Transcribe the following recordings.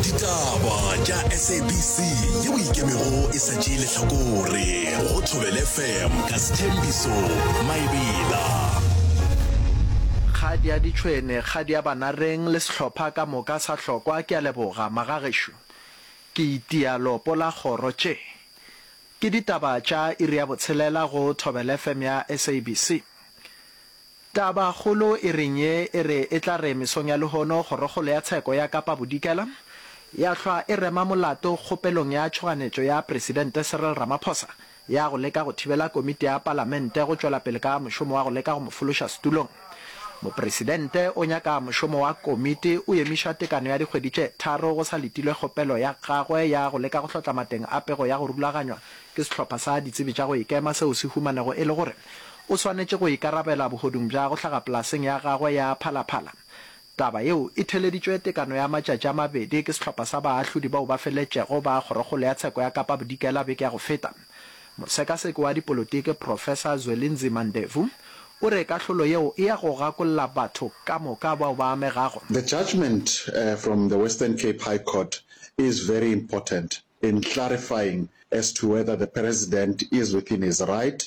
ditaba tša sabc ye o ikemego e sa tšee lehlakore go thobele fm ka sethembiso maebela kgadi ya ditšhwene kgadi ya banareng le sehlopha ka moka sa hlokwa ke a leboga magagešo ke itia lopo la kgoro tše ke ditaba tša iri ya botshelela go thobele fm ya sabc Tabakgolo e reng ye e re e tla re mesong ya lehono Kgorokgolo ya Tsheko ya Kapa Bodikela ya hlwa e rema molato kgopelong ya tšhoganetšo ya Presidente Cyril Ramaphosa ya go leka go thibela Komiti ya Palamente go tšwela pele ka mošomo wa go leka go mo fološa setulong. Mopresidente o nyaka mošomo wa Komiti o emišwa tekano ya dikgwedi tše tharo go sa letilwe kgopelo ya gagwe ya go leka go hlotla mateng a pego ya go rulaganywa ke sehlopha sa ditsebi tša go ikema seo se humanego e le gore O swanetše go ikarabela bohodung bja go hlaga polaseng ya gagwe ya phalaphala. Taba yeo e theeleditšwe tekano ya matšatši a mabedi ke sehlopha sa baahlodi bao ba feletšego ba Kgorokgolo ya Tsheko ya Kapa Bodikela beke ya go feta. Mosekaseki wa dipolotiki Professor Zwelinzima Ndevu o re kahlolo yeo e ya go gakolla batho ka moka bao ba amegago. The judgement from the Western Cape High Court is very important in clarifying as to whether the President is within his right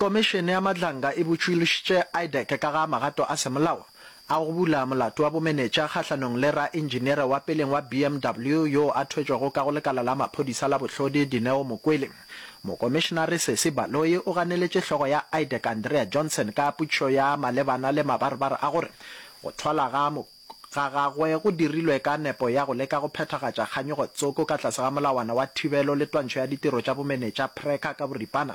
Komišene ya Madlanga e botšilošitše IDEC ka ga magato a semolao a go bula molato wa bomenetša kgahlanong le raentšiniere wa peleng wa BMW yo a thwetšwego ka go lekala la maphodisa la bohlodi Dineo Mokwele. Mokomišenare Sesi Baloyi o ganeletše hlogo ya IDEC Andrea Johnson ka putšo ya malebana le mabarebare a gore go thwalwa ga ga gagwe go dirilwe ka nepo ya go leka go phethagatša kganyogo tsoko ka tlase ga molawana wa thibelo le twantšho ya ditiro tša bomenetša, PRECA, ka boripana.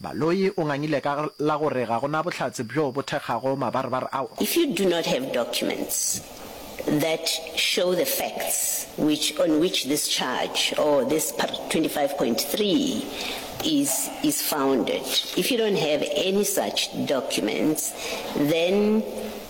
Baloyi o ngangile ka la go re ga go na bohlatse bjo bo thekgago mabarebare ao. If you do not have documents that show the facts which on which this charge or this part 25.3 is is founded, if you don't have any such documents then.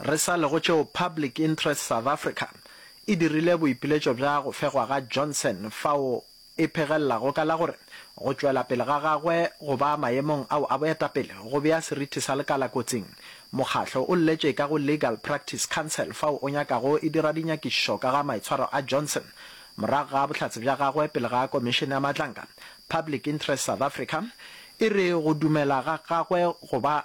Re sa le go tšeo Public Interest South Africa e dirile boipiletšo bja go fegwa ga Johnson fao e phegelelago ka la gore go tšwela pele ga gagwe go ba maemong ao a boetapele go bea seriti sa lekala kotsing, mokgahlo o lletše ka go Legal Practice Council fao o nyakago e dira dinyakišišo ka ga maitshwaro a Johnson morago ga bohlatse bja gagwe pele ga Komišene ya Matlanka. Public Interest South Africa e re go dumela ga gagwe go ba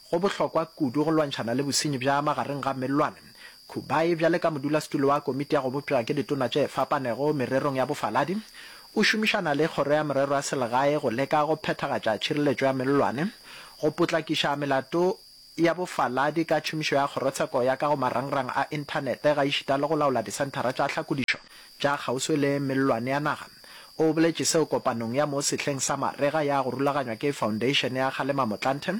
Go bohlokwa kudu go lwantšhana le bosenyi bja magareng ga mellwane. Kubayi, bjale ka modulasetulo wa Komiti ya go Bopša ke Ditona tše Fapanego mererong ya Bofaladi, o šomišana le Kgoro ya Merero ya Selegae go leka go phethagatša tšhireletšo ya mellwane, go potlakiša melato ya bofaladi ka tšhomišo ya Kgorotsheko ya ka go marangrang a Inthanete gaešita le go laola disenthara tša tlhakodišo tša kgauswi le mellwane ya naga. O boletše seo kopanong ya mo sehleng sa marega ya go rulaganywa ke Foundation ya Kgalema Motlanthe,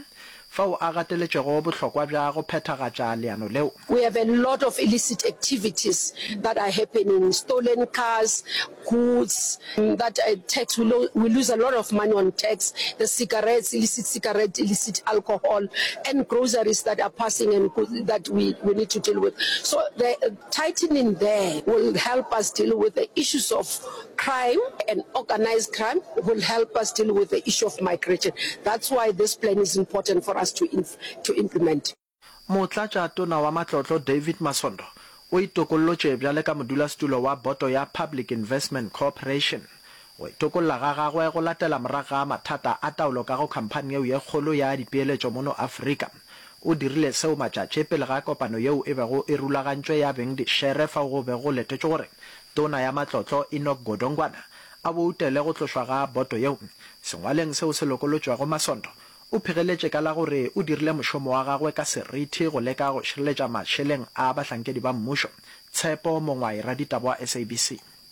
fao a gateletšego bohlokwa bja go phethagatša leano leo. We have a lot of illicit activities that are happening, stolen cars, goods that are tax, we lo, we lose a lot of money on tax, the cigarettes, illicit cigarette, illicit alcohol and groceries that are passing and that we, we need to deal with. So the, Tightening there will help us deal with the issues of crime and organized crime will help us deal with the issue of migration. That's why this plan is important for us to inf to implement. Motlatša Tona wa Matlotlo David Masondo o itokollotše bjale ka modulasetulo wa Boto ya Public Investment Corporation. Go itokolla ga gagwe go latela morago ga mathata a taolo ka go khamphani yeo ye kgolo ya dipeeletšo mono Afrika. O dirile seo matšatši pele ga kopano yeo e bego e rulagantšwe ya beng dišere fao go bego go letetšwe gore Tona ya Matlotlo Enoch Godongwana a boutele go tlošwa ga boto yeo. Sengwaleng seo se lokolotšwego Masondo o phegeletše ka la gore o dirile mošomo wa gagwe ka serithi go leka go šireletša mašeleng a bahlankedi ba mmušo, Tshepo Mongwae, raditaba wa SABC.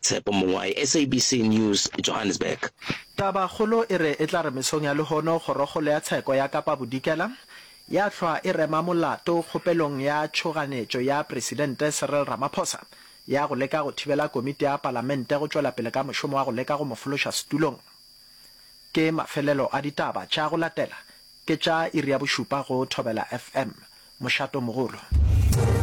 Tshepo Mongoai, SABC News, Johannesburg. Tabakgolo e re e tla re mesong ya lehono Kgorokgolo ya Tsheko ya Kapa Bodikela ya hlwa e rema molato kgopelong ya tšhoganetšo ya Presidente Cyril Ramaphosa ya go leka go thibela Komiti ya Palamente go tšwela pele ka mošomo wa go leka go mo fološa setulong. Ke mafelelo a ditaba tša go latela ke tša iri ya bošupa go Thobela FM. Mošato mogolo.